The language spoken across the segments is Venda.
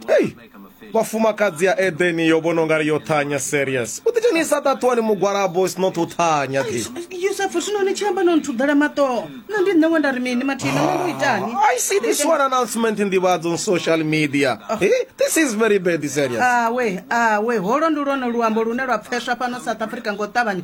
hei vhafumakadzi ya edeni yo vhona ungari yo thanya serious u ḓidzhenisa ṱaṱuwani mugwalabo is not u thanya thi yusufu zwino ni tshi amba no nthudela maṱoho na ndi nṋe we nda ri mini mathina no ndo itani i see this one announcement in nḓivhadzo on social media oh. hey, this is very bad serious awe awe holo ndi lwone luambo lune lwa pfeswa fhano south africa ngo ṱavhanya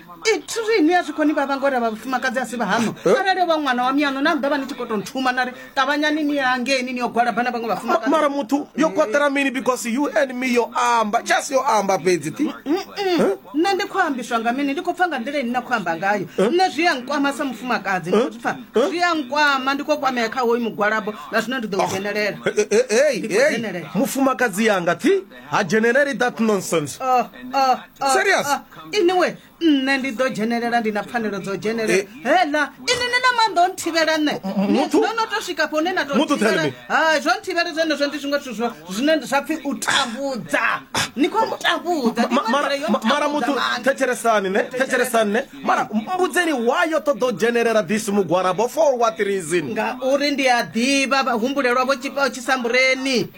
ithiri ni a zwi koni vha vha ngori a vha vhafumakadzi a si vha hano eh? arali vha ṅwana wa miyano na ḓavha ni tshi khou tou nthuma na ri ṱavhanyani ni ya ngeni ni yo gwalaba na vhaṅwe vhafumakadzi mara muthu yo kwatela mini because you and me yo amba just yo amba fhedzi ti eh? nṋe ndi khou ambiswa nga mini ndi khou pfa nga nḓila ini na khou amba ngayo eh? nṋe zwi ya nkwama sa mufumakadzi ndi khou pfa zwi ya nkwama ndi khou kwamea kha hoyu mugwalabo na zwino ndi ḓo u ah. dzhenelela mufumakadzi yanga ti ha dzheneleli that nonsense oh, oh, oh, serious iniwe nṋe ndi ḓo dzhenelela ndi na pfanelo dzo dzhenelela eh. hela ini ni na maanḓa o nthivhela nṋe no no to swika pone na tothivhela ha zwo nthivhela zwenezwo ndi zwiṅwe zwithu zwo zwine zwa pfhi u tambudza ni khou ntambudza mara muthu thetshelesani ne thetshelesani ne mara mbudzeni why yo ṱoḓa u dzhenelela this mugwarabo for what reason ngauri ndi a ḓivha vhahumbulelwa vho tshisambureni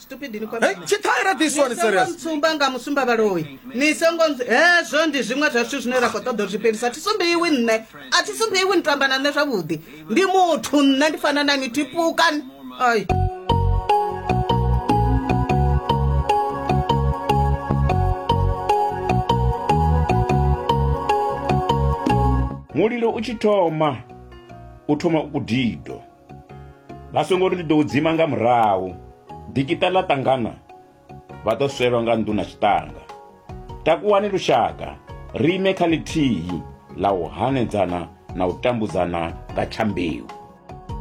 stupid ni kwambi. Hey, chithaira this one Songo serious. mtsumba nga musumba vhaloyi ni songo ntsu- hezwo ndi zwiṅwe zwa zwithu zwine ra khou ṱoḓa u zwi fhelisa thi sumbeiwi nṋe a thi sumbeiwi ni tamba na nṋe zwavhuḓi ndi muthu nṋe ndi fana na ni tipukan ai mulilo u tshi thoma u thoma u kudido Vha songo ri ndi ḓo u dzima nga murahu. Dikiṱa ḽa ṱangana vha ḓo swelwa nga nḓu na tshiṱanga. Takuwani lushaka, ri ime kha ḽithihi ḽa u hanedzana na u tambudzana nga tsha mbeu.